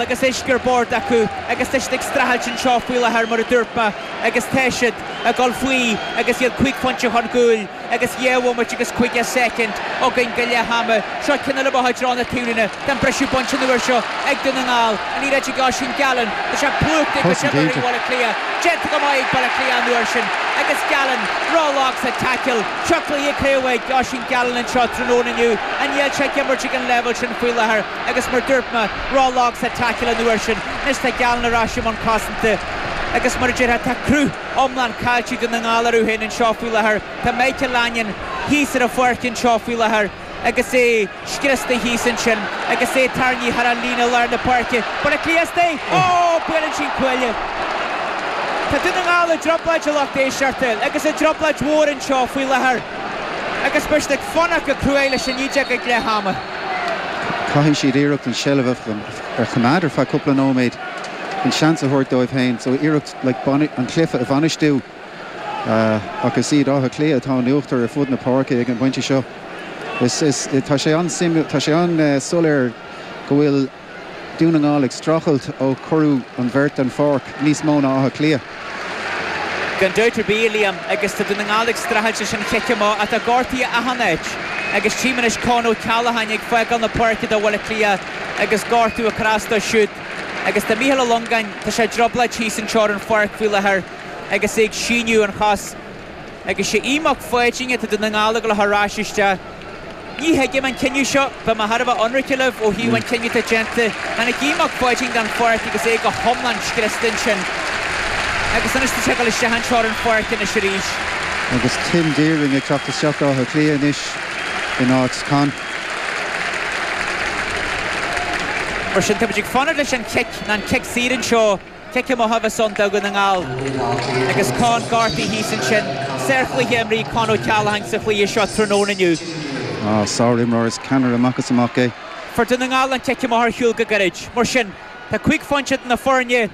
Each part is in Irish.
agus uisce ar bord acu agus tá siad ag streachailt anseo faoi láthair mar a dúirt mé agus tá siad ag dul faoi agus iad cúig phointe chun cúil agus dhá bhomaite agus caoga soicind againn go leath ama. Seo ceann eile buailte i dtreo na taobhlíne. Tá an briseadh bainte an uair seo ag Dún na nGall. An liathróid ag Oisín Gallen. Tá sé plúchta ag cosantóirí Bhaile Cliath. Déanta go maith ag Baile Cliath an uair sin agus Gallen ró-lag sa tackle. Seo cluiche crua ag Oisín Gallen anseo tráthnóna inniu. Ach níl sé ag imirt ag an leibhéal sin faoi láthair? agus mar a dúirt mé ró-lag sa tackle an uair sin, anois tá Gallen ar ais i mbun cosanta, agus mar a déarfá, tá cruth iomlán caillte ag Dún na nGall orthu féin anseo faoi láthair. Tá Michael Langan thíos ar an pháirc anseo faoi láthair agus é scriosta thíos ansin agus é ag tarraingt thar an líne i lár na páirce. Baile Cliath isteach! Ó! Buaileann sé an cuaille. Tá Dún na nGall i dtrioblóid a lucht éisteachta, agus i dtrioblóid mhór anseo faoi láthair. Agus beidh siad ag fanacht go cruaidh leis an fhideog ag leath ama. Caithfidh siad iarracht an tseilbh a choimeád ar feadh cúpla nóiméad chun seans a thabhairt dóibh féin, so iarracht like an cluiche a bhainistiú ach is iad Áth Cliath atá in uachtar ar fud na páirce ag an bpointe seo. Tá sé an-suimiúil, tá sé an-soiléir go bhfuil. Dún na nGall ag streachailt ó cuireadh an bheirt den pháirc níos mó ná Áth Cliath. Gan dabht ar bith, a Liam, agus tá Dún na nGall ag streachailt leis an chic amach, tá gortuithe achan áit agus tchím anois Con Ó Ceallacháin ag fágáil na páirce do Bhaile Átha Cliath agus gortú ag cur as dó siúd agus tá Micheál Ó Longáin, tá sé i dtrioblóid thíos anseo ar an pháirc faoi láthair agus é ag síneadh a chos agus sé Aodh Mac Pháidín atá Dún na nGall ag gabháil a chur ar ais isteach. Ní thuigim an cinneadh seo. Beidh mé thar a bheith ionraice libh ó thaobh an chinnidh atá déanta. Tháinig Aodh Mac Pháidín den pháirc agus é go hiomlán scriosta ansin. Agus anois tá sé ag dul isteach anseo ar an pháirc anois arís. Agus Tim Deering ag teacht isteach d'Áth Cliath anois in áit Con. Mar sin, táimid ag fanacht leis an chic, nó an cic saor anseo. Cic amach a bheas ann do Dhún na nGall agus Con gortaithe thíos ansin. Sárchluiche imrithe ag Con O'Callaghan sa chluiche seo tráthnóna inniu. Sár-imreoir is ceannaire amach is amach é. Fuair Dún na nGall an cic amach ar shiúl go gairid. Mar sin, tá cúig phointe idir na foirne,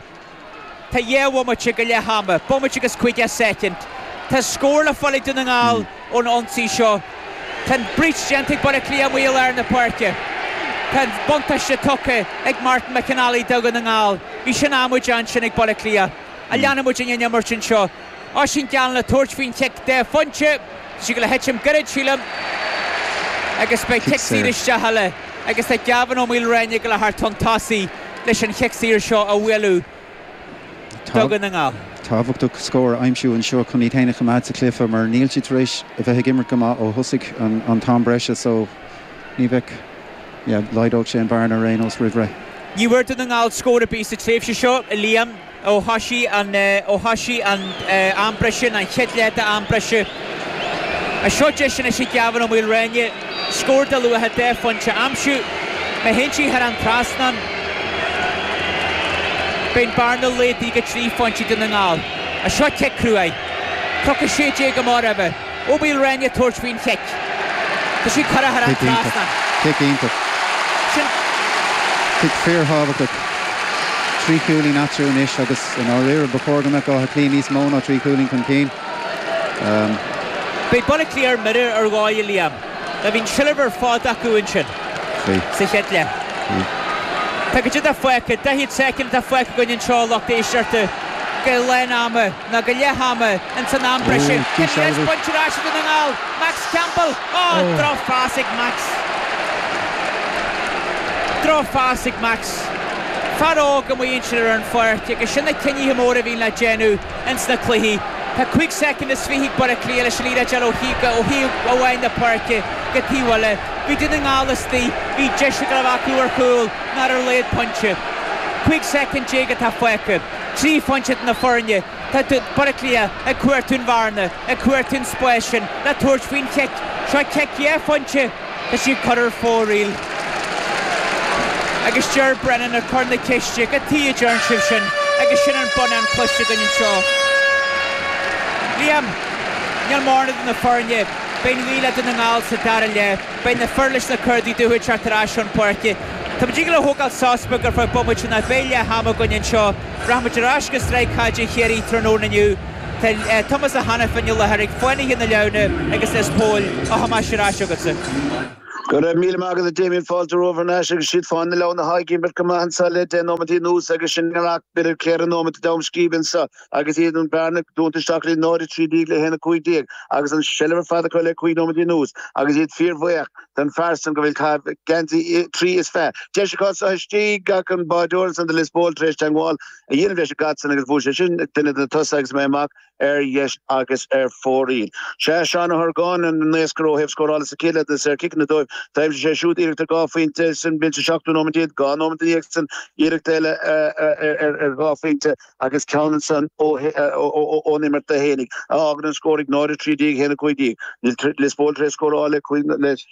tá dhá bhomaite go leith ama. Bomaite agus 50 soicind. Tá scór le fáil ag Dún na nGall. ón ionsaí seo. Tá an breach déanta ag Baile Cliath amuigh i lár na páirce. Tá an buntáiste tugtha ag Martin McNally do Dhún na nGall. Bhí sin amaideach ansin ag Baile Cliath ach leanfaidh muid leis an imirt anseo. Oisín Gallen le tabhairt faoin chic dhá phointe. Tá sé ag gabháil a thitim gairid, sílim, agus beidh cic saor isteach eile agus tá Gavin Ó Maoilreáin ag gabháil a theacht chun tosaigh leis an chic saor seo a bhualadh. Dún na nGall. tábhachtach scór a aimsiú anseo chun iad féin a choimeád sa chluiche mar níl siad tar éis a bheith ag imirt go maith ó thosaigh an t-am breise so ní bheadh, yeah, laghdódh sé an bhearna ar aon nós roimh ré. Ní bhfuair Dún na nGall scór ar bith sa tréimhse seo, a Liam, ó thosaigh an, ó thosaigh an t-am breise, ná an chéad leath d'am breise. Anseo deis anois ag Gavin Ó Maoilreáin. scór de luach dhá phointe a aimsiú, má théann sí thar an trasnán, beidh an bhearna laghdaithe go trí phointe Dún na nGall. A seo cic cruaidh. Cloch 16 i mbarr uibhe. Ó Maoilréanaí ag tabhairt faoin chic. Tá sí curtha thar an trasnán. Cic iontach. Sin. Cic fíor thábhachtach. Trí chúilín eatarthu anois agus i ndáiríre ba chóir go mbeadh Áth Cliath níos mó ná trí chúilín chun cinn. Beidh Baile Átha Cliath ar mire ar ndóigh, a Liam. Bhí an tseilbh ar fad acu ansin sa chéad leath. Tá cad é fágtha, daichead soicind atá fágtha againn anseo a lucht éisteachta. go leath ama nó go leath ama ins an am breise. Céim an deis bainte ar ais ag Dún na nGall, Max Campbell. Ó! Droch phas ag Max. Droch phas ag Max. Fear óg amuigh ansin ar an pháirc agus sin na cinnithe móra a bhíonn le déanamh. ins na cluichí. Tá cúig soicind is fiche ag Baile Átha Cliath leis an liathróid a fháil ó thaobh amháin na páirce go taobh eile. Bhí Dún na nGall istigh, bhí deis ghlan acu ar chúl ná ar laghad pointe. Cúig soicind déag atá fágtha. Trí phointe idir na foirne. Tá Baile Átha Cliath ag cuartú an bhearna, ag cuartú an spáis sin le tabhairt faoin chic. Seo cic dhá phointe. Tá sí curtha ar fóraoil. Agus Ger Brennan ag cur na ceiste, cad tuighe a ndearna sibh sin agus sin an bonnán cloiste againn anseo. Liam, Níl mórán idir na foirne, beidh an ghaoth le Dún na nGall sa dara leath, beidh na fir leis na cártaí dubha ag teacht ar ais chun páirce. Tá muid ag dul a thógáil sos beag ar feadh bomaite nó beidh leath ama againn anseo. Rachaidh muid ar ais go Sraith Chaide Chiarraí tráthnóna inniu. Tá Tomás Ó hAiniféin le haghaidh, Fánaithe na Leamhna agus Lios Póil, a Thomáis, ar ais agatsa. Go raibh míle maith agat, a Damien, fáilte romhaibh thar n-ais agus is iad Fánaithe na Leamhna atá ag imirt go maith anso le deich nóimeataí anuas agus sinn ag amharc b'fhéidir ar cheithre nóimeataí ó cheann scríbe anso agus iad an bhearna dúnta isteach go dtí 0, 13 le 1, 15 agus an seilbh ar fad acu le cúig nóimeataí anuas agus iad fíorbhuíoch den fear san go bhfuil ag caitheamh geansaí trí is fiche deis acu anso istigh ach an báideoir ansan do Lios Póil tar éis teangmháil a dhéanamh leis an gcaid san agus bhuail sé sin ag duine de na tosaithe agus imithe amach ar dheis agus ar fóraoil. 'Sé Seán Ó hArgáin an naoscaire ó thaobh scórála sa chéad leath de na saorchiceanna dóibh. D'aimsigh sé siúd iarracht ar dhá phointe sa seachtú nóiméad déag, dhá nóiméad i ndiaidh san iarracht eile ar dhá phointe agus ceann ansan ón imirt do Sheánie a fhágann an scór ag 0-13 le 1-15. Níl Lios Póil tar éis scóráil le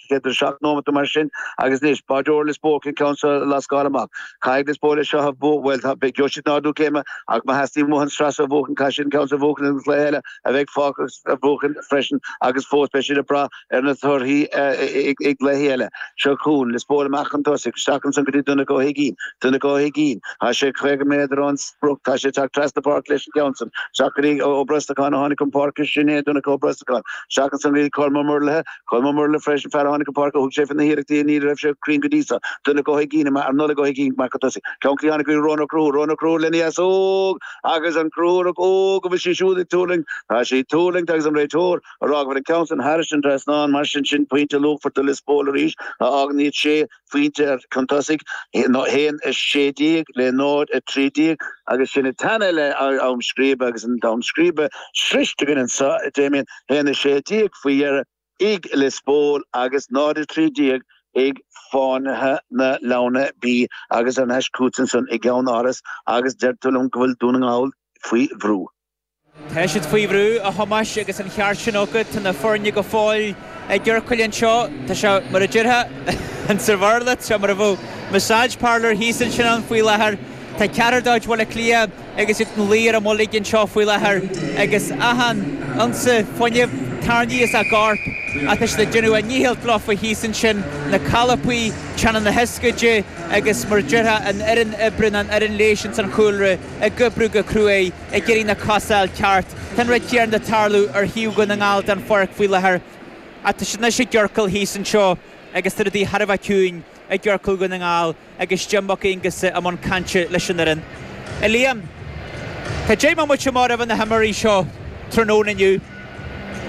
57 nóiméad mar sin agus anois báireoir Lios Póil an ceann seo a lascáil amach. Caithfidh Lios Póil é seo a bhuachan, bhuel tá, beidh deis an ardú céime ach má theastaíonn uathu an sraith seo a bhuachan caithfidh siad an ceann seo a bhuachan agus an cluiche eile a bheidh fágtha acu a bhuachan freisin agus fós beidh siad ag brath ar na torthaí i gcluichí eile. Seo chugainn Lios Póil amach chun tosaigh isteach ansan go dtí Donncha Ó hUigínn. Donncha Ó hUigínn, tá sé 50 méadar ón sprioc, tá sé ag teacht trasna páirce leis an gceann san. Isteach go dtí Ó Brosnacháin a tháinig chun páirce, sin é Donncha Ó Brosnacháin. Isteach ansan go dtí Colm Ó Muirthile, Colm Ó Muirthile freisin fear a tháinig chun páirce, thug sé fé na hiarrachtaí ach ní raibh sé cruinn go dtí seo, Donncha Ó hUigínn amach ar Nollaig Ó hUigínn amach chun tosaigh ceann clí a tháinig go dtí Rónán Ó Conchúir, Rónán Ó Conchúir lena dheasóg agus an Conchúrach óg, an bhfuil sí siúd ag tuirlingt, tá sí ag tuirlingt agus an réiteoir á rá go bhfuil an ceann san thairis an trasnán mar sin sin pointe luachmhar do Lios Póil arís, a fhágann iad sé phointe chun tosaigh, 1, 16, le 0, 13, agus sin i dteannta le ham scríbe agus an t-am scríbe sroichte againn anseo, a Damien, 1, 16, faoi dheireadh, ag Lios Póil agus 0, 13, ag Fánaithe na Leamhna, B, agus thar n-ais chugat ansan i gCeannáras agus deir tú liom go bhfuil Dún na nGall faoi bhrú. Tá siad faoi bhrú, a Thomáis, agus an ceart sin agat. Tá na foirne go fóill i gciorcail anseo. Tá sé mar a déarfá, an tSaibhir Lit, tá sé mar a bheadh massage parlour thíos ansin ann faoi láthair. Tá ceathrar de chuid Bhaile Átha Cliath agus iad ina luí ar a mbolg anseo faoi láthair agus achan unsa fuinnimh tarraingthe as a gcorp ach tá siad ag déanamh a ndícheall leofa thíos ansin, na colpaí, teannáin na hioscaide agus mar a déarfá an fhoireann oibre nó an fhoireann leighis ins an chúlra. ag oibriú go cruaidh ag iarraidh na cosa a fháil ceart. Tá an rud céanna ag tarlú ar thaobh Dhún na nGall den pháirc faoi láthair. Ach tá siad anois i gciorcal thíos anseo agus tá rudaí thar a bheith ciúin i gciorcal Dhún na nGall agus Jim Mac Aonghusa i mbun cainte leis an fhoireann. A Liam, tá 10 mbomaite móra roimh na himreoirí seo tráthnóna inniu.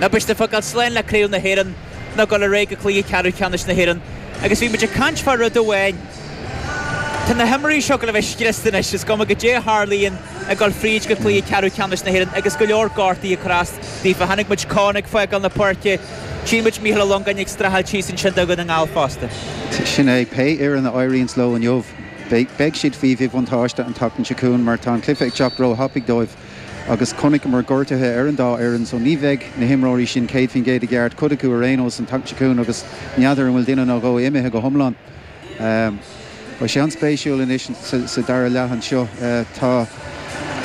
Nó beidh siad ag fágáil slán le Craobh na hÉireann nó ag gul ar aghaidh go Cluiche Ceathrú Ceannais na hÉireann agus bhí muid ag caint fá rud amháin, tá na himreoirí seo ag gul a bheith scriosta anois, is cuma goidé a tharlaíonn ag dul fríd go Cluiche Ceathrú Ceannais na hÉireann agus go leor gortuithe ag cur as daofa. Chonaic muid Con ag fágáil na páirce, tchí muid Micheál Ó Longáin ag streachailt thíos ansin do Dhún na nGall fosta. Sin é, pé fhoireann a éiríonns leo inniu, beidh siad faoi mhíbhuntáiste an tseachtain seo chugainn mar tá an cluiche ag teacht róthapaidh dóibh. agus chonaiceamar gortuithe ar an dá fhoireann so ní bheidh na himreoirí sin 100% i gceart, cuid acu ar aon nós an tseachtain seo chugainn agus n'fheadar an bhfuil duine nó dhó imithe go hiomlán. Beidh sé an-spéisiúil anois sa dara leath anseo. Tá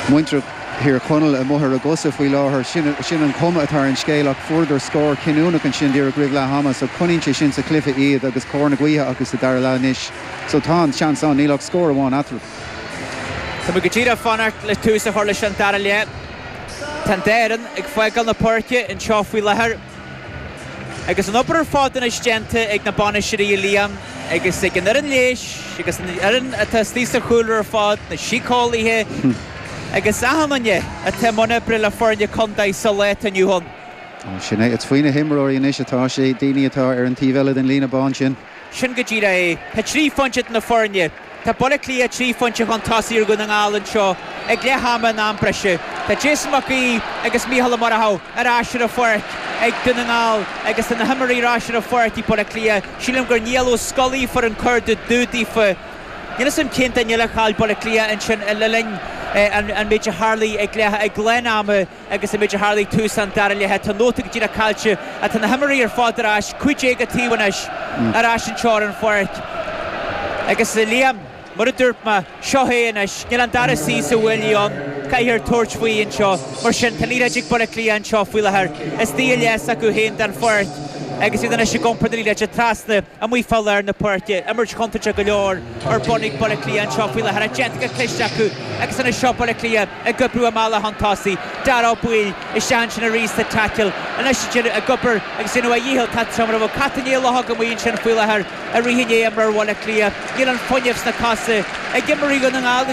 muintir Thír Chonaill amuigh ar a gcosa faoi láthair, sin an chuma atá ar an scéal, ach fuaireadar scór cinniúnach ansin díreach roimh leath ama so coinníonn sé sin sa chluiche iad agus cóir na gaoithe acu sa dara leath anois so tá an seans ann, níl ach scór amháin eatarthu. Tá mé go díreach ag fanacht le tús a chur leis an dara leath. Tá an dá fhoireann ag fágáil na páirce anseo faoi láthair agus an obair ar fad anois déanta ag na bainisteoirí, a Liam, agus ag an fhoireann leighis agus an fhoireann atá istigh sa chúlra ar fad, na síceolaithe agus achan duine atá i mbun oibre le foirne contae sa lá atá inniu ann. Sin é, is faoi na himreoirí anois atá sé, daoine atá ar an taobh eile den líne bán sin. Sin go díreach é. Tá trí phointe idir na foirne. Tá Baile Átha Cliath trí phointe chun tosaigh ar Dhún na nGall anseo ag leath ama in am breise. Tá Jason Mac Aoidh agus Micheál Ó Murchú ar ais ar an pháirc ag Dún na nGall agus tá na himreoirí ar ais ar an pháirc ag Baile Átha Cliath. Sílim gur Niall Ó Scolaí a fuair an cárta dubh daofa. Níl 'fhios a'm cén duine eile a chaill Baile Átha Cliath ansin le linn an méid a tharlaigh ag leath, ag lán ama. agus an méid a tharla ag tús an dara leath. Tá nóta go díreach caillte ach tá na himreoirí ar fad ar ais, cúig déag an taobh anois, ar ais anseo ar an pháirc. Agus, a Liam, mar a dúirt mé, seo hé anois. Níl an dara suí sa bhuaile ann, caithfear tabhairt faoi anseo. Mar sin, tá an liathróid ag Baile Átha Cliath anseo faoi láthair istigh i leath s'acu féin den pháirc agus iad anois ag iompar na liathróide trasna amuigh fá lár na páirce. Imirt chontúirteach go leor ar bun ag Baile Átha Cliath anseo faoi láthair ach déanta go cliste acu agus anois seo Baile Átha Cliath ag oibriú a mbealach chun tosaigh. Dáire Ó Baoill isteach ansin arís sa tackle. Anois siúd é ag obair agus déanamh a dhícheall tá trom orthu. Caitheann Ní Uilelghach amuigh ansin faoi láthair ag rith i ndiaidh imreoir Bhaile Átha Cliath. Níl an fuinneamh sna cosa ag imreoirí Dhún na nGall.